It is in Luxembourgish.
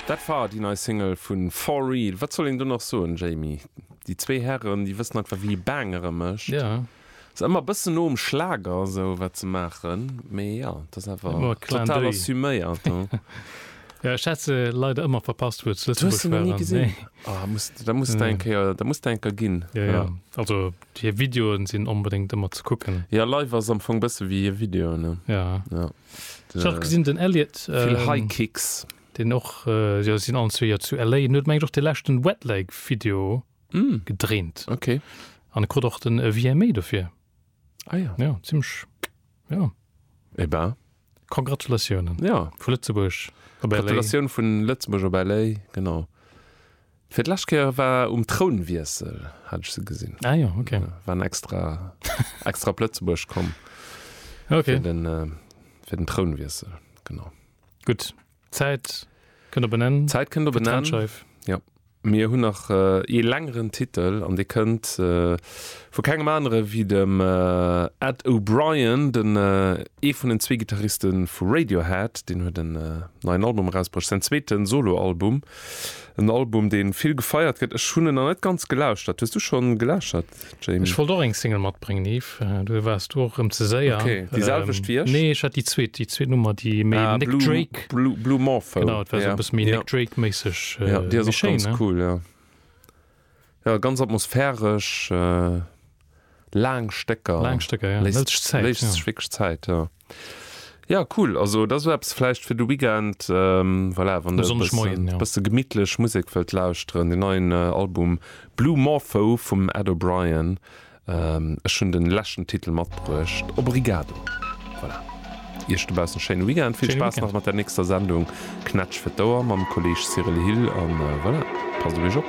Dat war déi nei Single vu For Real. Wat soll een do nach soen, Jamie? Déi zwee Hären, déi wëssen einfach, wéi ee Bangere mécht. Ass ëmmer e bëssen no um Schlager, esou wat se maachen, mee jo, et ass awer total assuméiert, hu? Jo, ech hat se leider ëmmer verpasst, wou et zu Lëtzebuerg waren. Du hues se nach ni gesinn? Nee. Oh, muss, da muss der eng Kéier, da muss der eng Kéier ginn. Jo, jo. Also, hir Videoen sinn onbedéngt ëmmer ze kucken. Jo, live ass am Fong bësse wéi hir Videoen, ne? Jo. Ech hat gesinn den Elliott vill ähm, High Kicks. deen och äh, jo sinn allen zwee jo zu LA en huet mengt och de leschten Wet Leg Video Mm, gedréint okay. an e krut och den äh, VMA dofir. Ah ja. Ja zimmlech ja. Eh ben, Congratulatiounen ja. vu Lëtzebuerg op LA. Gratulatioun vun Lëtzebuerg op LA, genau. Fir d'lescht Kéier war um Trounwiessel, hat ech se gesinn. Ah jo, ok. Waren extra, extra op Lëtzebuerg komm. Ok. Fir den, fir den Trounwiessel, genau. Gutt, d'Zäit kënnt op en Enn. D'Zäit kënnt op en Enn. D'Trennscheif. Jo. Mir hunn nach ee längeren Titel an dee kënnt vu kengem anere wéi dem Ed O'Brien, den, ee vun den zwee Gittariste vu Radiohead. Deen huet en neien Album erausbruecht, säin zweete Soloalbum. En Album deen vill gefeiert gëtt. Ech hunn en nach net ganz gelauschtert. Hues du schonn gelauschtert Jamie? Ech wollt och eng Single matbréngen Yves, du waars du och rëm ze séier. Ok, déi selwecht wéi ech? Nee ech hat déi zweet, déi zweet Nummer déi méi Ah Nick Drake, Blue Blue Blue Morpho genau et war esou e ja bësse méi ja Nick Drake méisseg, ja déi ass méi och schéin ganz ne? cool ja. Jo, ganz atmosphäresch, laang Stécker. Laang Stécker, jo. Léisst sech Zäit. Léisst sech wierklech Zäit, jo. Jo, cool. Also dat ass esou eppes vläicht fir de Weekend, voilà, wann e bësse gemittlech Musek wëllt lauschteren. Den neien Album Blue Morpho vum Ed O'Brien. Ech hunn den leschten Titel matbruecht. Obrigado. Voilà. Iech dobaussen e schéine Weekend. Vill Spaass nach mat der nächster Sendung Knätsch fir d'Ouer mam Kolleeg Cyril Hill. An voilà, passt op Iech op.